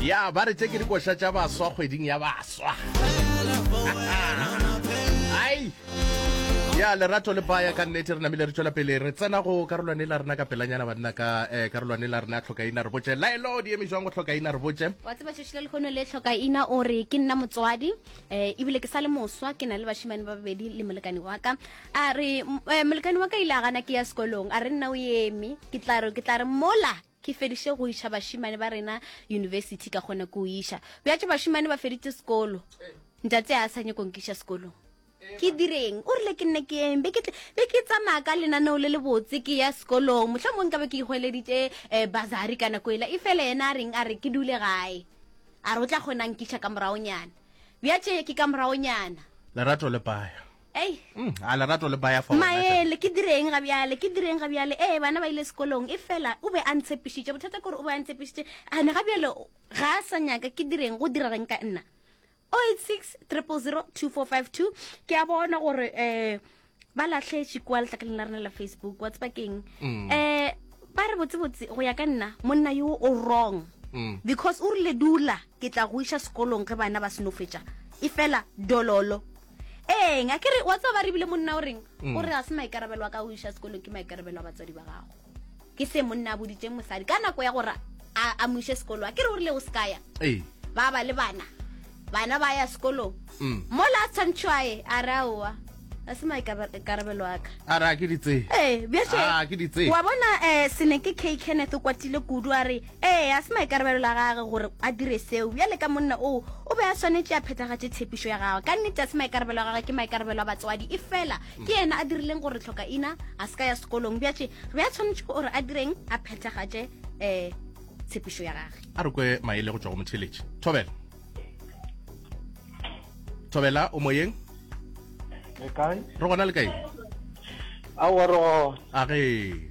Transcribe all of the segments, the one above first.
ya ba re tše ke dikoša tša baswa kgweding ya baswa ai ya lerato le baya ka nnete re namile re tšwela pele re tsena go karolwane la rena ka pelanyana banna ka eh, karolwane la rena tlhokaina re botse laelo di eme jwang go tlhokaina re botse wa tseba tšhošile lekgono le tlhokaina o re ke nna motswadi um ebile ke sa le moswa ke na le bashimane ba babedi le molekane wa ka a re eh, molekane wa ka ile a gana ke ya sekolong a re nna o eme ke tla re mola Ke fediše go iša bašemane ba rena yunibesithi ka kgona ke o iša. Bjatše bašemane ba feditše sekolo. Ntate a sa nyako nkiša sekolong. Ke direng? O rile ke nne ke eng? Be ke tle- be ke tsamaya ka lenaneo le lebotse ke ya sekolong. Mohla mong nka be ke ihweleditše eh, basari ka nako ela. Efela yena a reng? A re ke dule gae. A re o tla kgona nkiša ka moragonyana. Bjatše ke ka moragonyana. Lerato le paya. Ei. Mm, a lerato le baya fa Maele, ke direng ga bjale, ke direng ga bjale. Ee, bana ba ile sekolong, e fela o be a ntshepišitše. Bothata kore o be a ntshepišitše. A ne ga bjale ga a sa nyaka ke direng go dira reng ka nna. 086 000 2452 ke a bona gore eh ba lahletše kwa letlakaleng la rena la facebook wa tseba keng um ba re botsebotse go ya ka nna monna yo o wrong mm. because o rile dula ke tla go iša sekolong ge bana ba senofetša e fela dololo ee nga ke re wa tsaba re bile monna o reng mm. o re ga se maikarabelo a ka o iša sekolong ke maikarabelo a batswadi ba gago ke se monna a boditseng mosadi ka nako ya gore a mo iše sekolo a ke re o rile o se kaya ba ba le bana bana ba ya sekolong mm. mo la tshwantšhwae a re aowa a se maikarabelo aka ara ke ditse ee bjee wa bona um sene ke k kenneth o kwatile kudu a re Ee, ga se maikarabelo la gage gore a dire seo. Bjale ka monna oo, o be a swanetše a phethagatše tshepišo ya gagwe. Ka nnete, ga se maikarabelo a gagwe, ke maikarabelo a batswadi. Efela ke yena a dirileng gore Hlokaina a se ka ya sekolong. Bjatše, re be a swanetše gore a direng? A phethagatše um tshepišo ya gage. A re kwe maele go tšwa go motheletši. Thobela. Thobela, o moyeng? Re kae? Re gona le kae? Aowa, re gona. A ge.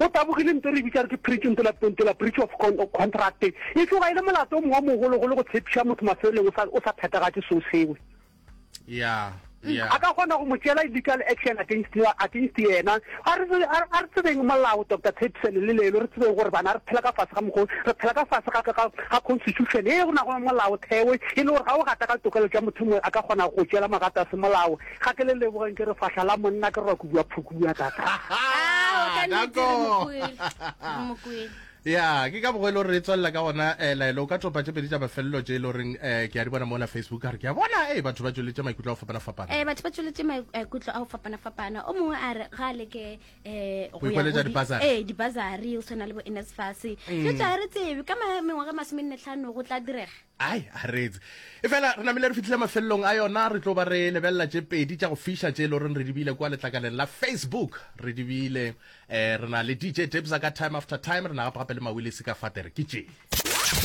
O tabogile nto re bitša re ke preach nto la nto la breach of con contract. E tloga e le molato o mongwe o mogolo golo go tshepiša motho mafelelong o sa o sa phetagatše so sewe. Yeah. Yeah. A ka kgona go mo tšela illegal action against against yena. A re a re tsebeng molao Dr. Tshepisene le lelo re tsebeng gore bana re phela ka fase ga mokgolo re phela ka fase ga ka ga constitution e go na go molao thewe e le gore ga o gata ka tokelo tša motho mongwe a ka kgona go tšela magata se molao Ga ke le lebogeng ke re fahla la monna ke re wa kubiwa phukuwa tata. Ah, o ka nnete re Nako. mokwele. Re mokwele. ya ke ka bogo e le gore re tswelela ka gona um laelo o ka topa tše pedi tša mafelelo tše e le goreng um ke a di bona mola facebook a re ke a bona ee batho ba tsweletše maikutlo a go fapana-fapana Eh, batho ba tsweletše maikutlo a go fapana-fapana o mongwe a re ga a leke um Go ikweletša di-bursary. Mm. ee dibasari o tshwana le bo nsfas dilo tša re tsebe ka ma- mengwaga masome nne tlhano go tla direga Ai, a reetse. Efela re namile re fihlile mafelelong a yona, re tlo ba re lebelela tše pedi tša go fiša tše e loreng re di bile kua letlakaleng la Facebook. Re di bile eh, re na le DJ Debza ka Time After Time, re na gape gape le Mawilisi ka Fatere. Ke tše.